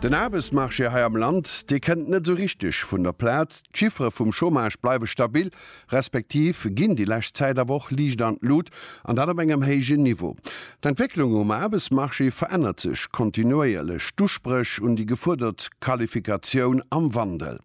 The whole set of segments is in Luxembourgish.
Den Aarbechtsmarché hei am Land, dee kënnt net esou richteg vun der Plaz. D'Chiffere vum Chômage bleiwe stabil, respektiv ginn déi lescht Zäit awer och liicht an d'Lut, an dat op engem héijen Niveau. D'Entwécklung um Aarbechtsmarché verännert sech kontinuéierlech, d'Uspréch un déi gefuerdert Qualifikatioun am Wandel.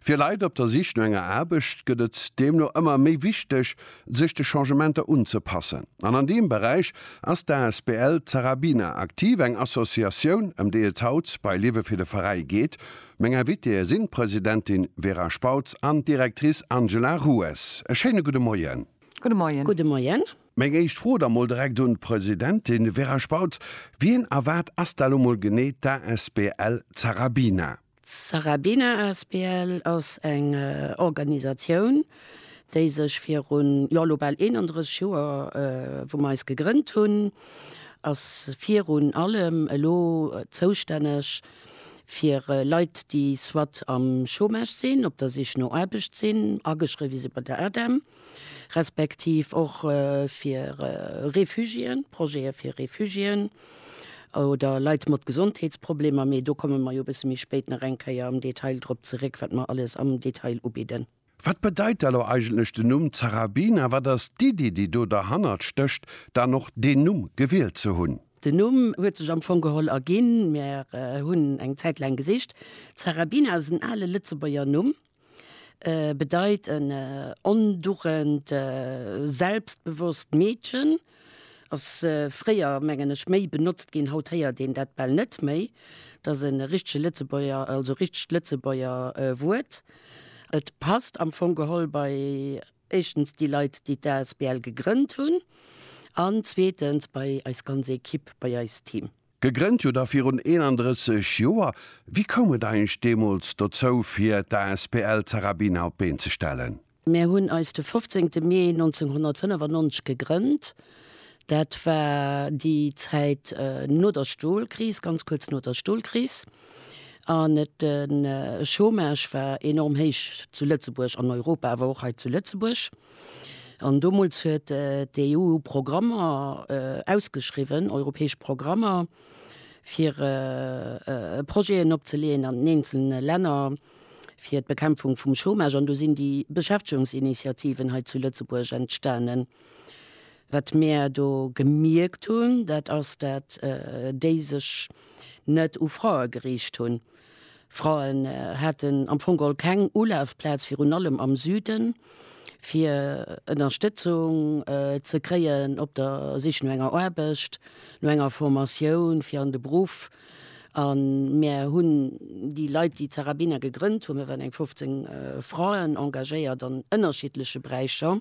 Fir Leit op der Sich no enger Aarbecht gëtt et deemno ëmmer méi wichteg, sech de Changementer unzepassen. An an deem Beräich ass d'ASBL Zarabina aktiv, eng Associatioun, ëm déi et haut bei Liewe fir de Veräi geet. Meng Invitéeë sinn d'Presidentin Vera Spautz an d'Directrice Angela Rues. E schéine gudde Moien. Gudde Moien. Gudde Moien. Meng éischt Fro da mol direkt un d'Presidentin. Vera Spautz, wien a wat ass da lo mol genee d'ASBL Zarabina? D'Sarabina asbl ass eng Organisatioun, déi sech virun, jo elo bal 31 Joer, wou mer eis gegrënnt hunn, ass virun allem elo zoustänneg fir Leit, déi soit am Chômage sinn, op der Sich no Aarbecht sinn, ageschriwwe si bei der ADEM, respektiv och fir Refugiéen, Projete fir Refugiéen oder Leit mat Gesondheetsproblemer, mee do komme mer jo e bësse méi spéit nach eng Kéier am Detail drop zeréck, wat mer alles am Detail ubidden. Wat bedeit da lo eigentlech den Numm Zarabina? Wat ass d'Iddi, déi do derhannert stécht, dann och deen Numm gewielt ze hunn? Den Numm huet sech am Fong geholl erginn, Mir hunn eng Zäit laang gesicht. Zarabina ass en ale Lëtzebuerger Numm, bedeit en ondurrend, selbstbewosst Meedchen. Ass fréier, mengen ech, méi benotzt ginn, haut héiert een dat bal net méi. Et ass e richtege Lëtzebuerger, also richtegt Lëtzebuerger Wuert. Et passt am Fong geholl bei, éischtens, déi Leit, déi d'asbl gegrënnt hunn, an zweetens, bei eis ganz Ekipp, bei eist Team. Gegrënnt hutt Der virun 31 Joer. Wéi koum et eigentlech deemools dozou, fir d'asbl Zarabina op d'Been ze stellen? Mir hunn eis de 15 Mee 1995 gegrënnt. Dat war déi Zäit no der Stolkris, ganz kuerz no der Stolkris. An de Chômage war enorm héich zu Lëtzebuerg, an Europa, awer och hei zu Lëtzebuerg. An domols huet d'EU Programmer ausgeschriwwen, europäesch Programmer, fir Projeten opzeleeën an den eenzelne Länner fir d'Bekämpfung vum Chômage. An do sinn déi Beschäftigungsinitiativen hei zu Lëtzebuerg entstanen. Wat mir do gemierkt hunn, dat ass, dat déi sech net u Frae geriicht hunn. Fraen haten am Fong all keng Ulafplaz, virun allem am Süden, fir Ënnerstëtzung ze kréien op der Sich no enger Aarbecht, no enger Formatioun fir an de Beruff. A mir hunn déi Leit, déi Zarabina gegrënnt hunn, mir waren eng 15 Fraen, engagéiert an ënnerschiddleche Beräicher,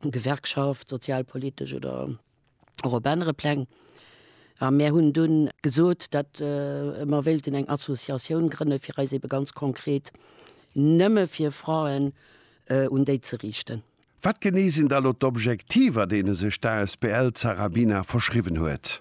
Gewerkschaft, sozialpolitesch oder. och op anere Pläng. A mir hunn dunn gesot, datt mer wéilten eng Associatioun grënne fir eis ebe ganz konkret nëmme fir Fraen un déi ze riichten. Wat genee sinn da lo d'Objektiver, deene sech d'Asbl Zarabina verschriwwen huet?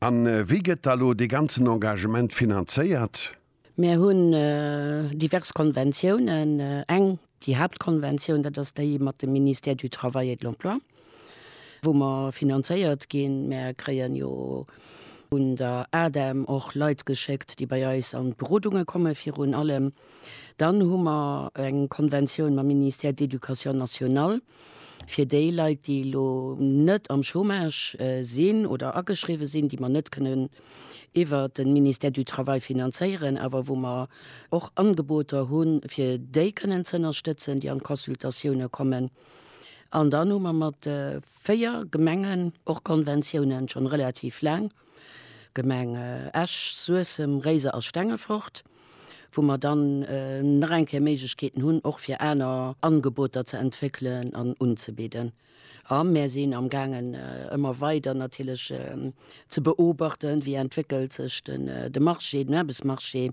A wéi gëtt da lo dee ganzen Engagement finanzéiert? Mär hunn divers Konventiounen. Eng, déi Haaptkonventioun, dat ass déi mat dem Ministère du Travail et de l'Emploi, wou mer finanzéiert ginn. Mär kréien jo vun der ADEM och Leit geschéckt, déi bei eis an d'Berodunge kommen, virun allem. Dann hu mer eng Konventioun mam Ministère de l'Éducation nationale, Fir déi Leit, déi elo net am Chômage sinn oder ageschriwwen sinn, déi mer net kënnen iwwert de Ministère du Travail finanzéieren, awer wou mer och Angeboter hunn, fir déi kënnen ze ënnerstëtzen, déi an d'Consultatioune kommen. An dann hu mer mat véier Gemengen och Konventiounen, scho relativ laang. Gemeng Esch, Suessem, Réiser a Stengefort, wou mer dann nach eng Kéier Méiglechkeeten hunn, och fir aner Angeboter ze entwéckelen an unzebidden. A mir sinn am gaangen, ëmmer weider natierlech ze beobachten, wéi entwéckelt sech de Marché, den Aarbechtsmarché,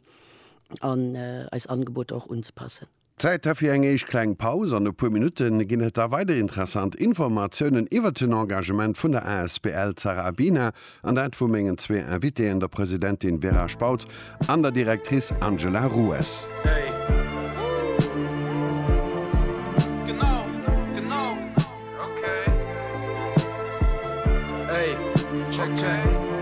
an eis Angeboter och unzepassen. Zäit da fir eng éischt kleng Paus. An e puer Minutte ginn et da weider interessant Informatiounen iwwert den Engagement vun der asbl Zara Abina an dat vu mengen zwee Invitéen, der Presidentin Vera Spautz an der Directrice Angela Rues.